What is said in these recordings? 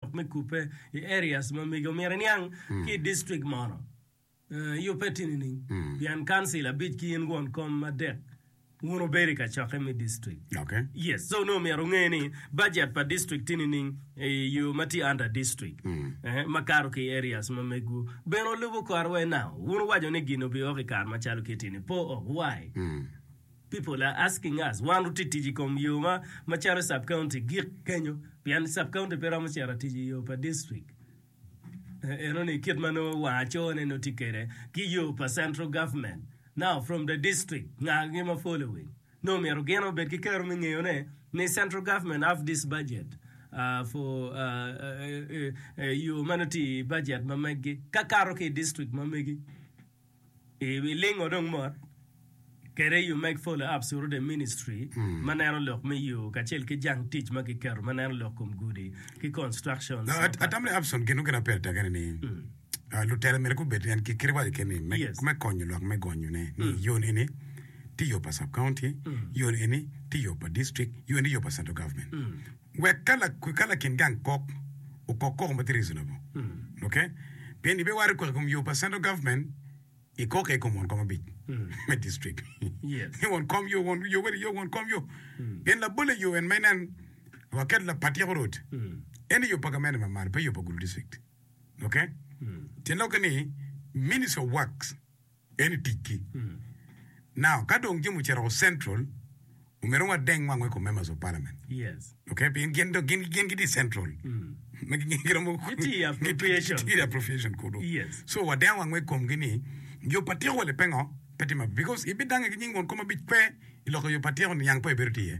lok me kubbe i areas ma mege omyero iniang ki i district mono i opeti nining? Pien council abic ki in won kom adek wun wubedo i kacokke me district. Okay. Yes, so nongo myero wunge ni budget pa district tye nining i yo ma tye under district eh, ma kato ki i areas ma megwu. Bene olubo kore wai now. Wun wuwaco ni gin obiwok i kare macalo kiti-ni, po ok. Why? People are asking us, wan oti tic i kom yo ma macalo sub county gik kenyo pien sub county pe romo cito tic i yo pa district eno ni kit ma nongo wa acoo ne nongo tye kede ki yo pa central government now from the district nga gi ma following nongo myero gin obed ki kero me ngeyo ne ni central government have this budget uh, for uh, uh, uh, uh, yo ma nongo tye i budget ma meggi ka kato ki i district ma megi I wi lingo dong mot kwede You Make Follow Up Surrounding Ministry ma neno lok me yo kacel ki jang tic ma kiketo ma neno lok kom gudi ki constructions Now, at- atam ni Abson gin mukene aper tekene ni ah, lutela myero gubed en ki kite waco kene ni me, Yes. me konyo lwak me gonyone ni yon eni ti yo pa sub county yon eni ti yo pa district yon eni yo pa central government Wek ka lakin gang kok okok koko ma tye reasonable, ok? Pien ibiwaro kok i kom yo pa central government, ikok aye i kom won kom abic me district. Ni won kom yo, won yo weli yo, won kom yo. Pien labolle yo en ma inen waketo lapa tyeko rwod, ene yo pa gamente ma malo, pe yo pa gulu district, ok? Tyen lokke ni Ministry of Works. En i ticgi. Now, ka dong jami ocito woko Central, omyero wadeng wangwa i kom Members of Parliament. Okay? Pien gin dong, gin, gin gitye i Central. Ma gi, gi romo, Gitye i appropriation. gitye i appropriation kunu. So, wadengo wangwa i komgi ni, yo pa tyeko wele pingo pe tye maber? Because ibidangnge ki nying won kom ma bicwe i lok i yo pa tyeko, niang pe ibedo tye iye.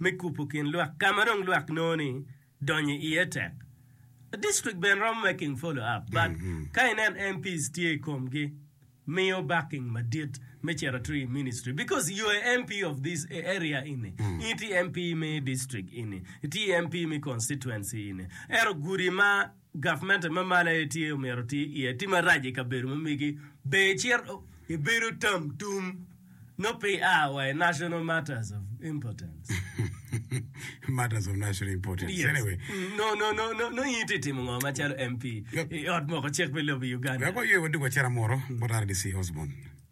me kubo kin lwak ka ma dong lwak nongo ni donyo iye tek. District bene romo making follow up but ka ineno MPs tye i komgi miyo backing madit me cito to i ministry because you are MP of this area ini, in itye MP me district ini, itye MP me constituency ini ento gudi ma Gavment ma malo aye tye omyero ti iye ti marac i kabedo ma megi ber icito i bedo tam tum nongo pe i a wa i national matters of importance. Matters of national importance. Yes. Anyway. No, no, no, no, no in ti timo ngo macalo MP Yep. i ot moko cik pi lobo i Uganda. Wek waywe wadug acera moro bot RDC Osborn.